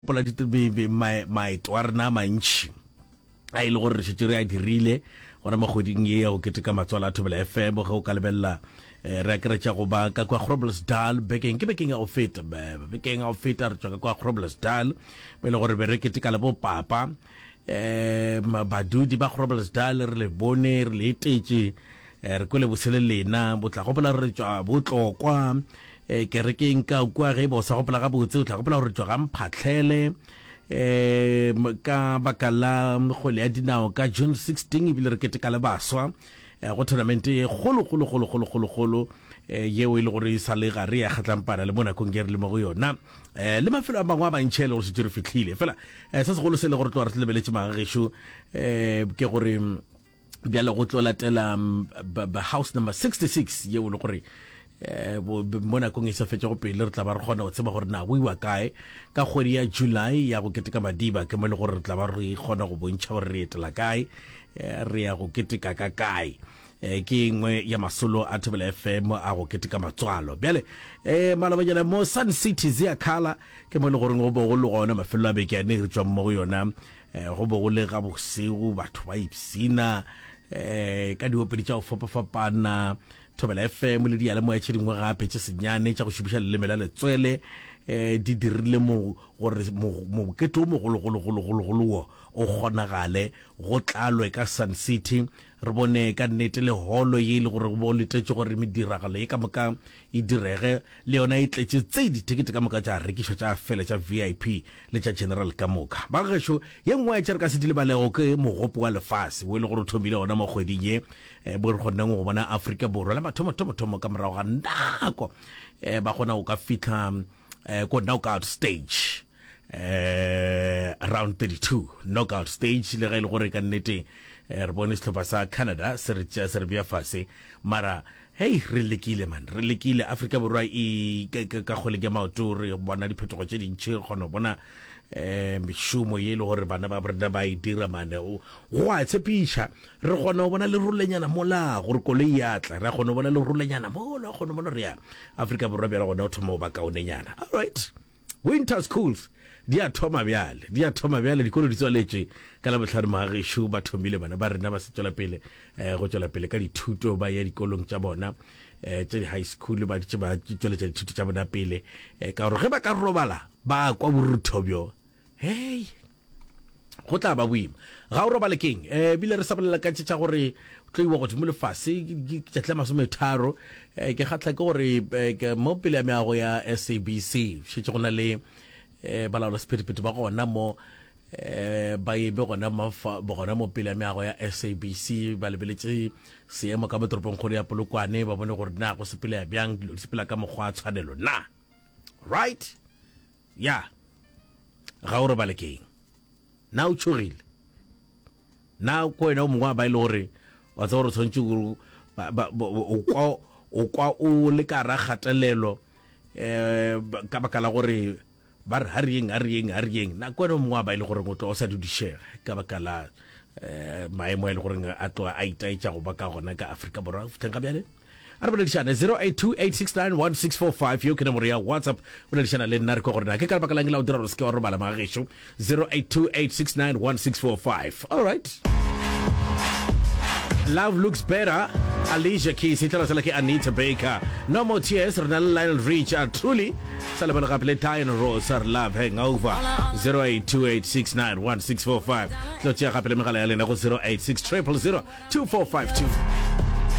Maeto a rena a mantši a e le gore re šetše re a dirile gona mo kgweding ye ya go keteka matswalo a Thobela FM. Ge o ka lebelela, re akaretša go ba ka kwa Groblersdal bekeng ke bekeng ya go feta bekeng ya go feta re tšwa ka kwa Groblersdal mo e le gore be re keteka le bo papa um badudi ba Groblersdal re le bone re le etetše Eh, re kwele bose le lena bo tla gopola gore re tšwa botlokwa eh, kerekeng ka kua ge e ba o sa gopola gabotse o tla gopola gore re tšwa ga mphatlhele um ka baka la kgwele ya dinao ka june 16 ebile re keteka le baswa eh, go tournament e kgolokgolokgolokgolokgolokgolo eh, yeo e le gore e sa le ga re ya kgatlampana le mo nakong e re le mo go yona eh, le mafelo a mangwe a mantšhe e le gore setse re fitlhile fela eh, se segolo se e le gore tloa re tlebeletše magagešo um ke gore bjale go tlo latela um, house number 66 yeo le gore eh, mo nakong e sa fetšago pele re tla ba re kgona go tseba gore na go iwa kae ka kgwedi ya july ya go keteka madiba ke mo e le gore re tla ba re kgona go bontšha gore re etela kae eh, re ya go keteka ka kae eh, ke engwe ya masolo a thobela fm a go keteka matswalo bjale um malabanyana mo sun city zea kala ke mo e le goreng go bo go le gona mafelo a beke a ne re tswang mo go yona Eh, go be go le ga bosego batho ba ipsina eh, ka diopedi tša go fapafapana thobela fm le diyalemoya tše dingwe gape tše senyane tša go šomiša leleme la letswele um di dirile gore mokete o mogologologologolo wo o kgonagale go tlalwe ka sun city Re bone ka nnete le holo ye e lego gore bo letetše gore mediragalo ye ka moka e direge, le yona e tletše tse dithekete ka moka tša rekišwa tša fela tša VIP le tša General ka moka. Ba gešo, ye nngwe ya tše re ka se di lebalego ke Mogopo wa Lefase wo e lego gore o thomile gona mo kgweding ye bo re kgonneng go bona Afrika Borwa la mathomo-thomothomo ka morago ga nako ba kgona go ka fihla ko knockout stage. eh round 32 knockout stage le ga ile e gore ka nnete eh, re bone sehlopha sa Canada se re tšea se re bja fase mara hey re lekile man re lekile Afrika Borwa e ka kgole ke maoto re bona diphetogo tše dintšhi kgona bona eh mešomo ye e le gore bana ba borena ba e dira mane go a tshepiša re kgona go bona le rolenyana mola gore koloi ya tla re kgona go bona le rolenyana mola kgona bona re ya Afrika Borwa bjala gona o thoma go ba kaonenyana all right Winter schools di a thoma bjale, di a thoma bjale, dikolo di tswaletšwe ka Labohlano magagešu. Ba thomile bana ba rena ba se tšwela pele eh, go tšwela pele ka dithuto, ba ya dikolong tša bona eh, tša di-high school, ba ditše ba tšweletša dithuto tša bona pele eh, ka gore ge ba ka robala ba kwa borutho bjo hei go tla ba boima ga o robale keng um eh, bile re sa bolela ka tšetša gore tlo iwa godimo lefase tšatla masometharo um ke kgatlha ke gore eh, mo pele ya meago ya sabc šetse go na le um balaola sephetephete ba gona mo um ba ebe gona gona mo pele ya meago ya sabc ba lebeletse seemo ka mo toropong kgolo ya polokwane ba bone gore na go sepele ya bjang dilo di sepela ka mokgwa a tshwanelo na right Ya, ga o robale ke eng? Na o tšhogile? Na ko wena o mongwe wa ba e le gore wa tsa gore o tshwanetse gore ba- ba- bo- bo- o kwa- o kwa o le ka ra kgatelelo um ka baka la gore ba re ha reyeng ha reyeng ha reyeng na ko wena o mongwe wa ba e le goreng o tlo o sa dudišega ka baka la um maemo a e le goreng a tloga a itaetša go ba ka gona ka afrika borwa go fitlheng ga bjale A re boledišane 0828691645 yeo ke nomoro ya WhatsApp boledišana le nna re kwe gore na ke ka lebaka lang la o dira gore se ke wa robala mga gešo 0828691645 all right Love looks better Alicia Keys e tla sala ke Anita Baker No more tears re na le Lionel Richard Truly sa le bona gape le Diana Ross re love hangover 0828691645 tlo tšea gape le megala ya lena go 0860002452